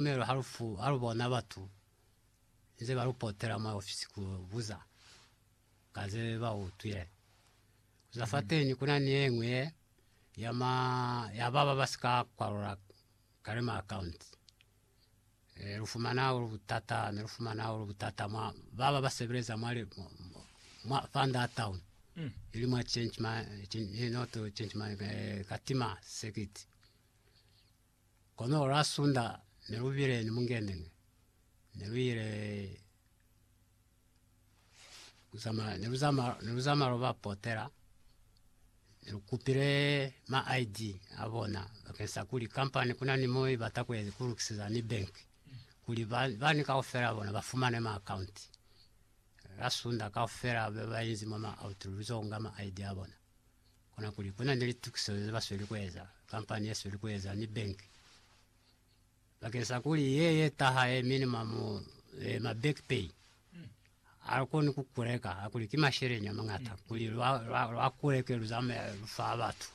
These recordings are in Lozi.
Tumelo halufu halubona batu nze balupotela mwa ofisi kubuza ka ze bautwile. Kuza fateni kuna ni yeñwi ye ya baba basika kwalula kale ma akaunti. Lufumana hahulu butata, nelufumana hahulu butata mwa baba basebeleza mwa Fund a Town ili mwa Change Money Katima Circuit. Kono lwa Sunda ne lu bile ni mungendene, ne lu ile ku zamaya, ne lu zamaya lu ba potela, ne lu kupile ma ID a bona bakeng sa kuli company ku na ni mo i bata ku lukiseza ni bank kuli bani kaufela bona ba fumane ma account. Lwa Sunda kaufela ba ba inzi mwa ma out lu zo nga ma ID a bona. Konakuli kuna ni litukiso ze ba sweli kueza, kampani ye sweli kueza, ni bank, bakeng sa kuli ye ye taha ye minimum eh, ma back pay a koni ku kuleka hakuli ki masheleni a mangata kuli lwa, lwa, lwa kuleke lu zamaya lu fa batu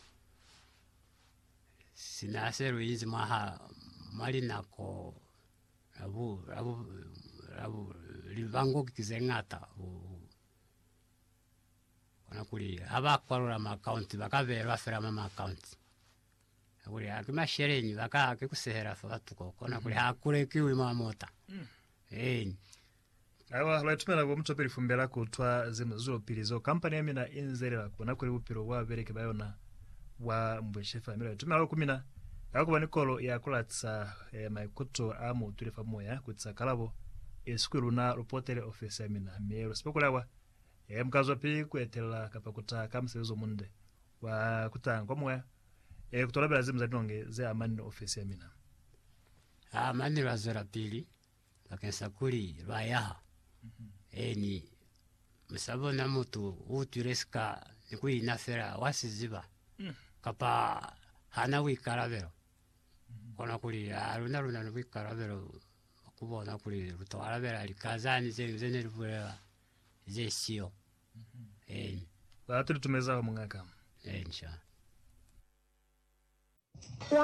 sina se lu inzi mwaha mwa linako la bu, la bu, la bu, libango ki ze ngata. Kona kuli ha ba kwalula ma account ba ka beelwa fela mwa ma account ka kuli ha ki masheleñi ba ka ki kusehela fa batu ko kona kuli ha kulekiwi mwa mota eeni. Awa lwa itumela bo mutopeli fumbela kutwa ze muzulo pili zo kampani ya mina inzelela kona kuli bupilo bwa babeleki ba yona bwa mbweshe fela, mi lwa itumela luli ku mina. Ka ku ba ni kolo ya ku latiza eh, maikuto a mu utwile fa moya ku tisa kalabo, esi kuli luna lu potele ofesi ya mina, mi lu sepa kuli awa eh, mu ka zwapi ku etelela kapa ku taha ka musebezi o munde wa ku taha kwa moya, eh, ku to labela zimu za linonge ze amani ni ofesi ya mina. Ha mane lwa zwelapili Bakeng sa kuli lwa yaha, eeni, musa bona mutu u utwile sika ni ku ina fela wa si ziba, kapa ha na buikalabelo, kono kuli ha luna lu na ni buikalabelo bwa ku bona kuli lu to alabela lika zani ze ngi ze ne li bulela ze siyo. Eeni. Ba tu li tumeza ho, Muñ'a ka. Eeni, sha.